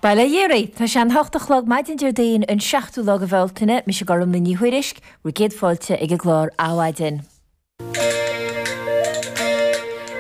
Bail ó Dhia oraibh. Tá sé a hocht a chlog maidin Déardaoin an seachtú lá de Bhealtaine. Mise Gormfhlaith Ní Thuairisg, bhur gcéad fáilte ag an gclár Adhmhaidin.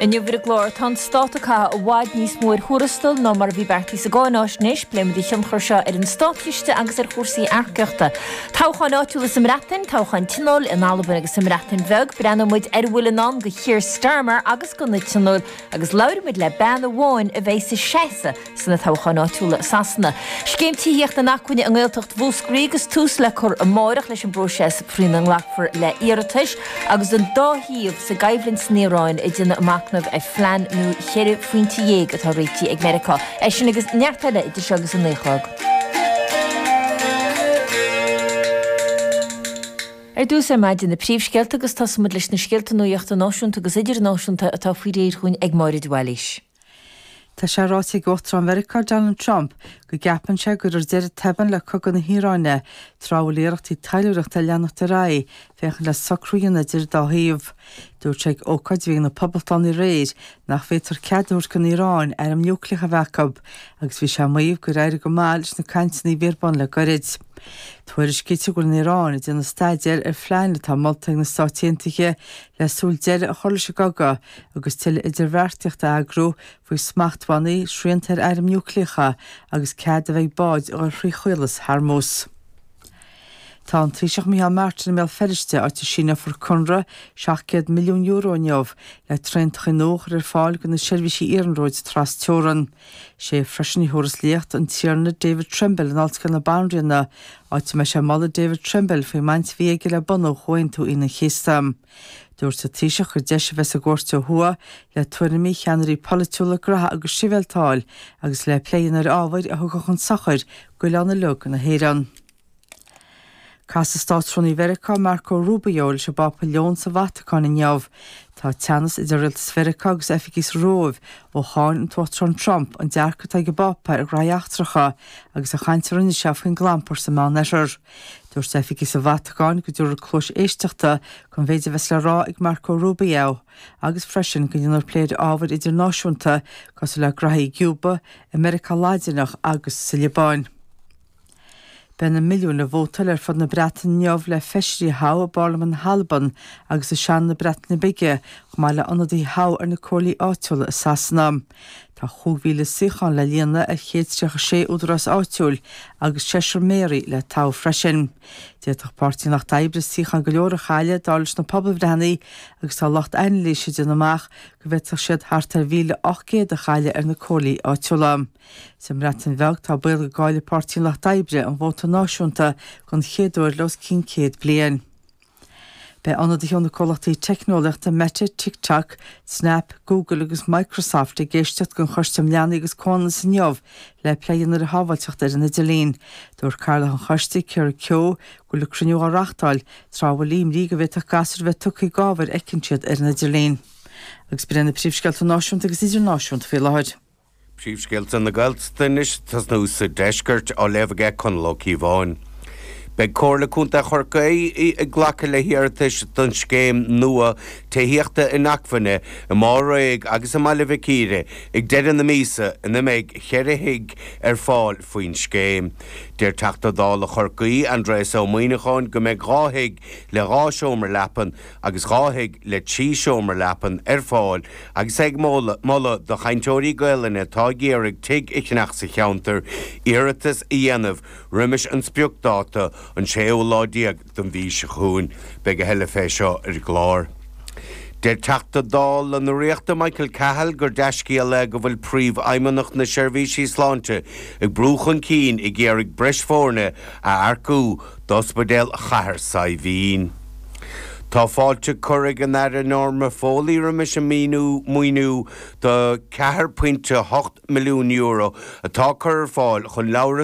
Inniu ar an gclár, tá an Stát ag caitheamh i bhfad níos mó ar thuarastail ná mar a bhí beartaithe sa gcáinaisnéis. Pléimid a thionchar seo ar an státchiste agus ar chúrsaí earcaíochta. Toghcháin áitiúla sa mBreatain, toghcháin Tionóil in Albain agus sa mBreatain Bheag, breathnóimid ar a bhfuil i ndán do Keir Starmer agus do na Tionóil Agus labhróimid le bean amháin a bheidh ag seasamh sna toghcháin áitiúla i Sasana. Scéim Tithíocht Inacmhainne i nGaeltacht Mhúscraí agus tús le cur amárach leis an bpróiseas faoina nglacfar le hiarratais agus an dá thaobh sa gcoimhlint san Iaráin, iad ag déanamh a macnaimh ar phlean nua ceithre phointe déag atá réitithe ag Meiriceá. É sin agus neart eile idir seo agus a naoi a chlog. Ar dtús ar maidin na príomhscéalta agus tosaímid leis na scéalta nuachta náisiúnta agus idirnáisiúnta atá faoi réir dhúinn ag Máire de Bhailís. Tá sé ráite ag Uachtarán Mheiriceá Donald Trump go gceapann sé go gcuirfear deireadh tobann le cogadh na hIaráine tráth a bhfuil iarrachtaí taidhleoireachta ag leanacht ar aghaidh féachaint le socrú a dhéanamh idir an dá thaobh. Dúirt sé ag ócáid a bhí ag na Poblachtánaigh aréir nach bhféadfaí cead a thabhairt don Iaráin airm núicléacha a bheith acu, agus bhí sé ag maíomh gur éirigh go maith leis na cainteanna a bhí ar bun le goirid. Tuairiscítear go bhfuil an Iaráin ag déanamh staidéir ar phlean atá molta ag na Stáit Aontaithe le súil deireadh a chur leis an gcogadh agus tuilleadh idirbheartaíocht a eagrú faoi smachtbhannaí, srianta ar airm núicléacha agus cead a bheith ag báid dul thrí Chaolas Hormuz. Tá an Taoiseach Micheál Martin i mBéal Feirste, áit a síneofar conradh €700 milliún inniu le traentachaí nua a chur ar fáil do na seirbhísí iarnróid trasteorann. Is é freisin a thiúras léacht an Tiarna David Trimble in Ollscoil na Banríona, áit a mbeidh sé ag moladh David Trimble faoin mbaint a bhí aige le bunú Chomhaontú Aoine an Chéasta. Dúirt an Taoiseach gur deis a bheas sa gcuairt ó thuaidh le tuairimí cheannairí polaitiúla graithe agus sibhialta a fháil agus le plé a dhéanamh ar ábhair a rachadh chun sochair d'oileán uilig na hÉireann. Casfaidh Státrúnaí Mheiriceá Marco Rubio leis an bPápa Leon sa Vatacáin inniu. Tá teannas idir Rialtas Mheiriceá agus oifigigh sa Róimh ó cháin an tUachtarán Trump an dearcadh atá ag an bPápa ar ghraithí eachtracha agus an chaint a rinne sé faoin gclampar sa Meán Oirthear. Dúirt oifigigh sa Vatacáin go dtabharfar cluas éisteachta don mhéid a bheas le rá ag Marco Rubio agus freisin go ndéanfar plé ar ábhair idirnáisiúnta cosúil le graithí i gCúba, i Meiriceá Laidineach agus sa Liobáin. Beidh na milliúin ag vótáil ar fud na Breataine inniu le feisirí a thoghadh i bParlaimint na hAlban agus i Seanad na Breataine Bige chomh maith le ionadaithe a thoghadh ar na comhairlí áitiúla i Sasana. Tá cúig mhíle suíochán le líonadh ar chéad is tríocha sé údarás áitiúil agus seisear méaraí le toghadh freisin. D'fhéadfadh Páirtí an Lucht Oibre suíocháin go leor a chailleadh, dar leis na pobalbhreitheanna, agus tá lucht anailíse ag déanamh amach go bhféadfadh siad thart ar mhíle ocht gcéad a chailleadh ar na comhairlí áitiúla. Sa mBreatain Bheag tá baol go gcaillfidh Páirtí an Lucht Oibre an vóta náisiúnta den chéad uair le os cionn céad bliain. Beidh ionadaithe ó na comhlachtaí teicneolaíochta Meta, TikTok, Snap, Google agus Microsoft ag éisteacht den Choiste um Leanaí agus Comhionannas inniu le plé a dhéanamh ar shábháilteacht ar an idirlíon. Dúirt Cathaoirleach an Choiste, Keira Keogh, go bhfuil an cruinniú á reáchtáil tráth a bhfuil imní go bhféadfadh gasúir a bheith tugtha d'ábhar a fheiceann siad ar an idirlíon. agus b'in iad na príomhscéalta náisiúnta agus idirnáisiúnta faoi láthair. Príomhscéalta na Gaeltachta anois ag tosnú sa deisceart, á léamh aige Conall Ó Cíobháin. Beidh Comhairle Contae Chorcaí ag glacadh le hiarratais don scéim nua tithíochta inacmhainne i Maigh Ré agus i mBaile Mhic Íre ag deireadh na míosa ina mbeidh cheithre thigh ar fáil faoin scéim. Deir Teachta Dála Chorcaí, Aindrias Ó Muimhneacháin go mbeidh dhá thigh le dhá sheomra leapan, agus dhá thigh le trí sheomra leapan ar fáil agus é ag moladh do chainteoirí Gaelainne atá ag iarraidh tigh a cheannach sa cheantar iarratas a dhéanamh roimis an spriocdháta, an séú lá déag don mhí seo chugainn. Beidh a thuilleadh fé seo ar an gclár. Deir Teachta Dála na Ríochta Michael Cahill gur dea-scéal é go bhfuil Príomhfheidhmeannach na Seirbhíse Sláinte ag brú chun cinn ag iarraidh breis foirne a earcú d'Ospidéal Chathair Saidhbhín. Tá fáilte curtha ag an Aire Norma Foley roimis an maoiniú do 4.8 milliún euro atá curtha ar fáil chun leabhair